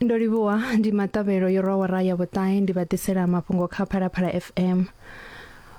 ndo livhuwa ndi maṱavhelo yo rwa wara ya vhuṱahe ndi vha ḓisela mafhungo kha phalaphala fm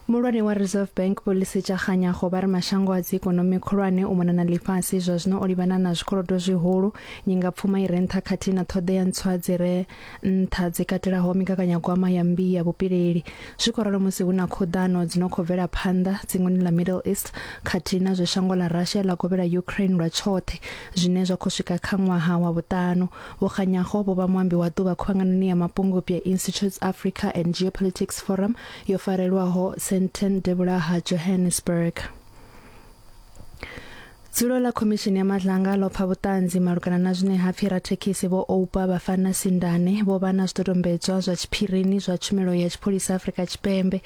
mulwane wa reserve bank polisi tsha kganyago vha ri mashango a dzi ikonomi khulwane u mona na ḽifhasi zwa zwino o livhana na zwikolodo zwihulu nyingapfuma i re nṱha khathihi na ṱhoḓea ntswa dzi re nṱha dzi katelaho migaganyagwama ya mmbi ya vhupileli zwi khou ralo musi hu na khoḓano dzi no khou bvela phanḓa dzingoni ḽa middle east khathihi na zwe shango ḽa russia ḽa kovhela ukraine lwa tshoṱhe zwine zwa khou swika kha ṅwaha wa vhuṱanu vho kganyaho vho vha muambi wa ḓuvha khuvhanganoni ya mapungubwi ya institutes africa and geopolitics forum yo farelwaho senten devhula ha johannesburg Dzulo ḽa Khomishini ya Madlanga ḽo pfa vhuṱanzi malugana na zwine ha pfi rathekhisi vho Oupa Bafana Sindane vho vha na zwidodombedzwa zwa tshiphirini zwa Tshumelo ya Tshipholisa Afrika Tshipembe.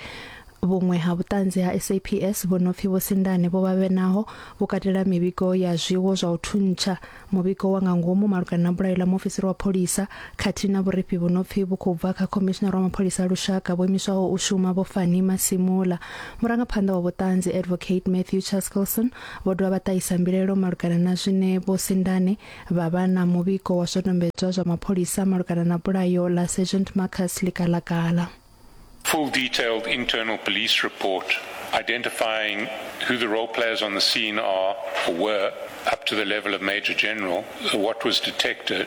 Vhuṅwe ha vhuṱanzi ha SAPS vho no pfi Vho Sindane vho vha vhe naho vhu katela mivhigo ya zwiwo zwa u thuntsha, muvhigo wa nga ngomu malugana na bulayo ḽa muofisiri wa pholisa khathihi na vhurifhi vhu no pfi vhu khou bva kha Khomishinara wa Mapholisa a Lushaka vho imiswaho u shuma Vho Fannie Masemola. Murangaphanḓa wa vhuṱanzi Advocate Matthew Chaskelson Vho dovha vha ṱahisa mbilaelo malugana na zwine Vho Sindane vha vha na muvhigo wa zwidodombedzwa zwa mapholisa malugana na bulayo ḽa Sergeant Marcus Likalakala. Full detailed internal police report identifying who the role players on the scene are or were up to the level of Major General, what was detected,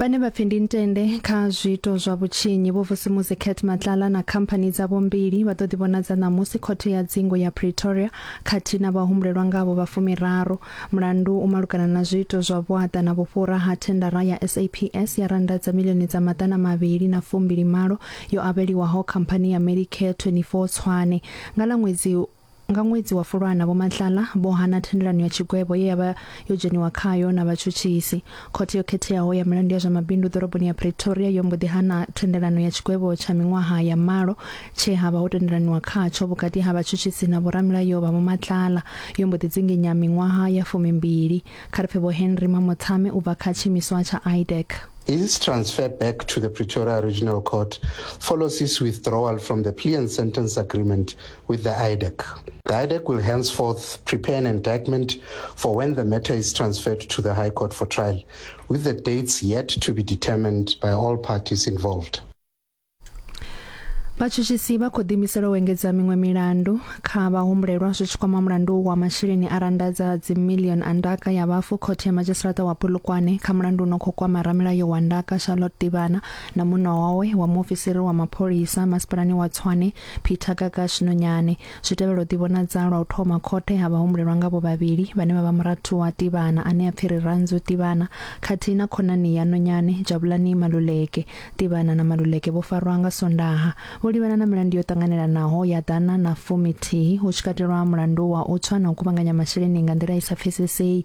vhane vha pfi ndi ntende kha zwiito zwa vhutshinyi vho vusimusi cat matlala na khamphani dzavho mbili vha ḓo ḓivhonadza ṋamusi khothe ya dzingo ya pretoria khathihi na vhahumbulelwa ngavho vha fumiraru mulandu u malugana na zwiito zwa vhuaḓa na vhufhura ha thendara ya saps ya randa dza milioni dza maḓana mavhili na fumbili malo yo avheliwaho khamphani ya medicare 24 tshwane nga ḽa ṅwedzi Nga ṅwedzi wa Fulwana, Vho Matlala vho hana thendelano ya tshigwevho ye ya vha yo dzheniwa khayo na vhatshutshisi. Khothe yo Khetheaho ya Milandu ya zwa Mabindu ḓoroboni ya Pretoria yo mbo ḓi hana thendelano ya tshigwevho tsha miṅwaha ya malo tshe ha vha ho tendelaniwa khatsho vhukati ha vhatshutshisi na vhoramilayo vha Vho Matlala. Yo mbo ḓi dzinginya miṅwaha ya fumimbili. Kha ri pfe Vho Henry Mamotsame u bva kha tshiimiswa tsha IDEC. His transfer back to the Pretoria Regional Court follows his withdrawal from the plea and sentence agreement with the IDEC. The IDEC will henceforth prepare an indictment for when the matter is transferred to the High Court for trial, with the dates yet to be determined by all parties involved. vhatshutshisi vha khou ḓiimisela u engedza miṅwe milandu kha vhahumbulelwa zwi tshi kwama mulandu wa masheleni a randa dza dzimillion a ndaka ya vhafu khothe ya madzhisiṱiraṱa wa polokwane kha mulandu uno khou kwama ramilayo wa ndaka charlotte ḓivhana na muṋo wawe wa muofisiri wa mapholisa masipalani wa tshwane Peter Gagash Nonyane. Zwi tevhela u ḓivhonadza lwa u thoma khothe ha vhahumbulelwa ngavho vhavhili vhane vha vha murathu wa Tivhana ane a pfi Rirhandzu Tivhana khathihi na khonani ya Nonyane, Jabulani Maluleke. Tivhana na Maluleke vho farwa nga Sondaha. Vho livhana na milandu yo ṱanganelanaho ya ḓana na fumi thihi, hu tshi katelwa mulandu wa u tswa na u kuvhanganya masheleni nga nḓila i sa pfesesei.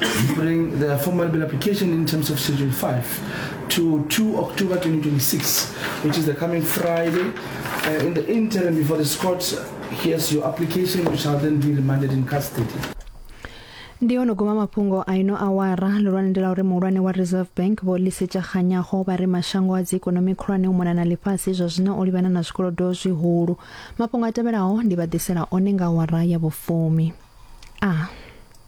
We bring the formal bill application in terms of Schedule 5 to 2 October 2026, which is the coming Friday. Uh, in the interim, before the court hears your application, you shall then be remanded in custody. ndi ono goma mafhungo a ino awara lulwane ndi la uri muhulwane wa reserve bank vho lisetsa kganyago vha ri mashango a dziikonomi khulwane u mona na ḽifhasi zwa zwino o livhana na zwikolodo zwihulu mafhungo a tevhelaho ndi vha ḓisela one nga awara ya vhufumi a